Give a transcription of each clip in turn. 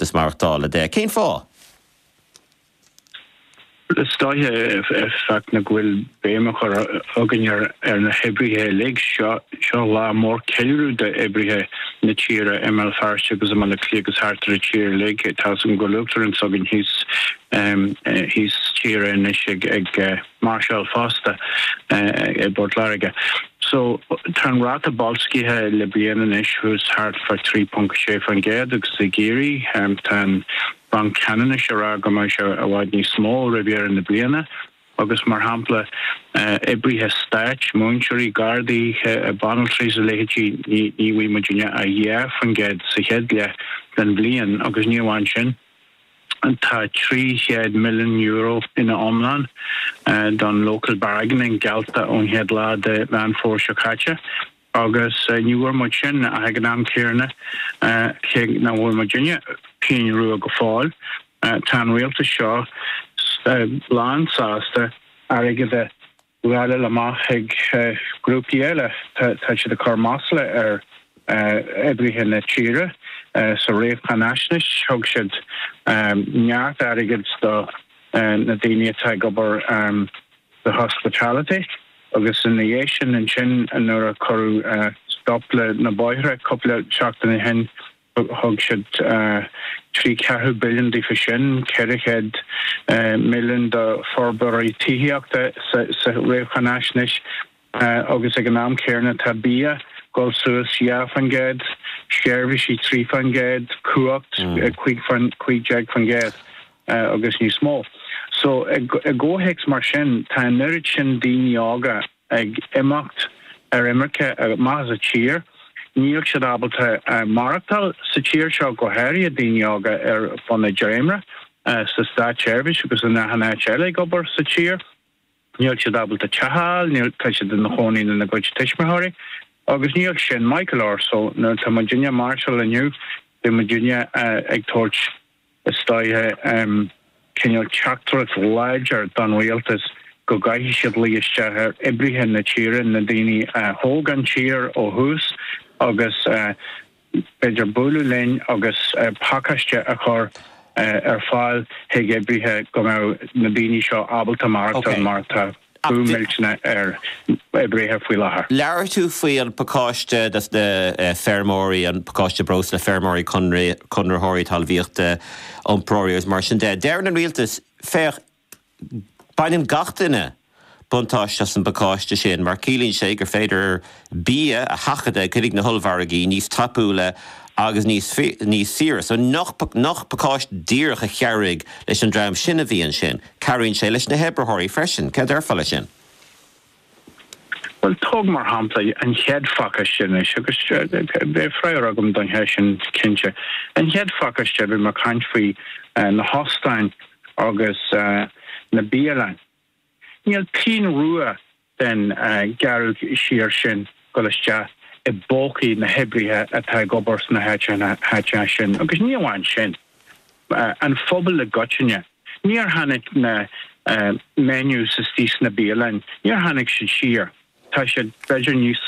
Is maireachtála de. Cén fáth? Is dóiche an fáth ná go bhfuil béim á cur againn ar na hoibrithe uilig. Seo lá mór ceiliúradh d'oibrithe na tíre i mBéal Feirste agus i mBaile Átha Cliath agus thart ar an tír uilig. Tá a fhios agam go bhfuil uachtarán s'againn thíos thíos tíre anois ag. máirseáil fosta i bPort Láirge. So tá an ráta boilscithe le bliain anois thuas thart fá 3.6% agus sa ghearrthéarma tá an Banc Ceannais ag rá go mbeidh sé i bhfad níos mó roimh dheireadh na bliana agus mar shampla oibrithe stáit, múinteoirí, gardaí, banaltraí is a leithéidí ní bhfuighidh muidinne ach 2% sa chéad leath den bhliain agus ní amháin sin. Tá €300 milliún ina iomlán don local bargaining geallta ón chéad lá de Mheán Fómhair seo caite agus ní bhfuair muid sin ach ag an am céanna cé nach bhfuair muidinne pingin rua go fóill. Tá an rialtas seo lán sásta airgead a. ghealladh amach ag grúpaí eile. Tá siad ag cur masla ar oibrithe na tíre. Sa réamhcháinaisnéis thug siad neart airgid do na daoine atá ag obair sa hospitality agus ina dhiaidh sin ansin nuair a cuireadh stop le na bóithre cúpla seachtain ó shin, Thug siad trí ceathrú billiún daofa sin, ceithre chéad milliún do forbróirí tithíochta sa réamhcháinaisnéis agus ag an am céanna tá bia ag dul suas dhá faoin gcéad, seirbhísí trí fán gcéad, cumhacht cuig déag faoin gcéad agus níos mó. So i gcomhthéacs mar sin tá an oiread sin daoine óga ag imeacht ar imirce amach as a tír. Níl siad ábalta maireachtáil sa tír seo, go háirithe daoine óga ar bhun an dréimire, sa státseirbhís agus in achan áit eile ag obair sa tír. Níl siad ábalta teach a fháil, tá siad ina chónaí lena gcuid tuismitheoirí. Agus níl sin maith go leor. So nuair atá muidinne ag máirseáil inniu, beidh muidinne ag tabhairt is dóiche cineál teachtaireacht láidir don rialtas go gcaithfidh siad luí isteach ar oibrithe na tíre, na daoine a thóg an tír ó thús agus b'fhéidir bualadh linn agus pacáiste a chur ar fáil chuig oibrithe go mbeadh na daoine seo ábalta maireachtáil mar tá. Brú millteanach ar oibrithe faoi láthair. Labhair tú faoin bpacáiste dos na feirmeoirí, an pacáiste breosla, feirmeoirí, conraitheoirí talmhaíochta, iompróirí agus mar sin de. Deireann an rialtas, féach, baineann gach duine buntáiste as an bpacáiste sin mar ciallaíonn sé gur féidir bia a sheachadadh, chuig na hollmhargaí níos tapúla agus níos níos saoire. So ní pacáiste díreach a chabhraigh leis an dream sin a bhí ansin, cabhraíonn sé leis na hoibritheoirí freisin. Céard a déarfá leis sin? Bhuel, tóg mar shampla an chéad phacáiste anois agus beidh freagra agam don cheist sin cinnte. An chéad phacáiste, bhí mé ag caint faoi na hóstáin agus na bialann. Níl pingin rua den ghearradh siar sin ag dul isteach i bpócaí na hoibrithe atá ag obair sna háiteacha sin agus ní amháin sin, an phobail i gcoitinne. Níor tháinig na menus istigh sna bialann, níor tháinig siad siar. Tá siad b'fhéidir níos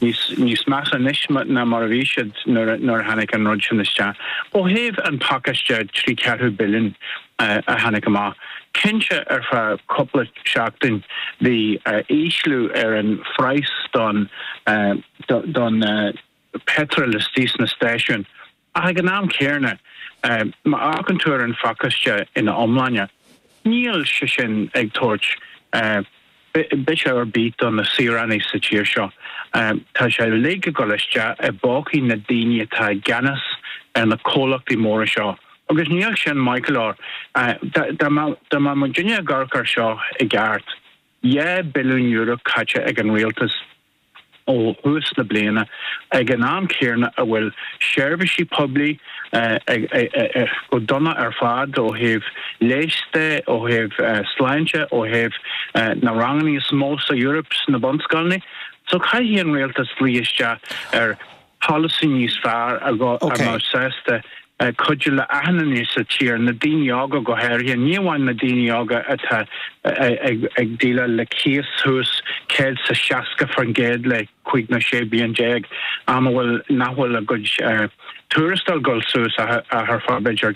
níos measa anois ná mar a bhí siad nuair a tháinig an rud sin isteach. Ó thaobh an pacáiste trí ceathrú billiúin a tháinig amach, cinnte ar feadh cúpla seachtain bhí ísliú ar an phraghas don pheitreal istigh sna stáisiúin, Ach ag an am céanna, má amharcann tú ar an phacáiste ina iomláine, níl sé sin ag tabhairt biseach ar bith do na saoránaigh sa tír seo. Tá sé uilig ag dul isteach i bpócaí na daoine atá i gceannas ar na comhlachtaí móra seo. Agus níl sin maith go leor. Dá mbeadh muid in ann ag amharc air seo i gceart, dhá billiún euro caite ag an rialtas, ó thús na bliana, ag an am céanna a bhfuil seirbhísí poiblí go dona ar fad ó thaobh leighis de, ó thaobh sláinte, ó thaobh na ranganna is mó sa Eoraip sna bunscoileanna. So caithfidh an rialtas luí isteach ar. polasaí níos fearr a bheadh sásta cuidiú le achan nduine sa tír, na daoine óga go háirithe, ní amháin na daoine óga atá ag déileáil le cíos thuas, céad sa 60% le cúig nó 16 bliain, am a bhfuil nach bhfuil a gcuid tuarastail ag goil suas ach ar fad b'fhéidir.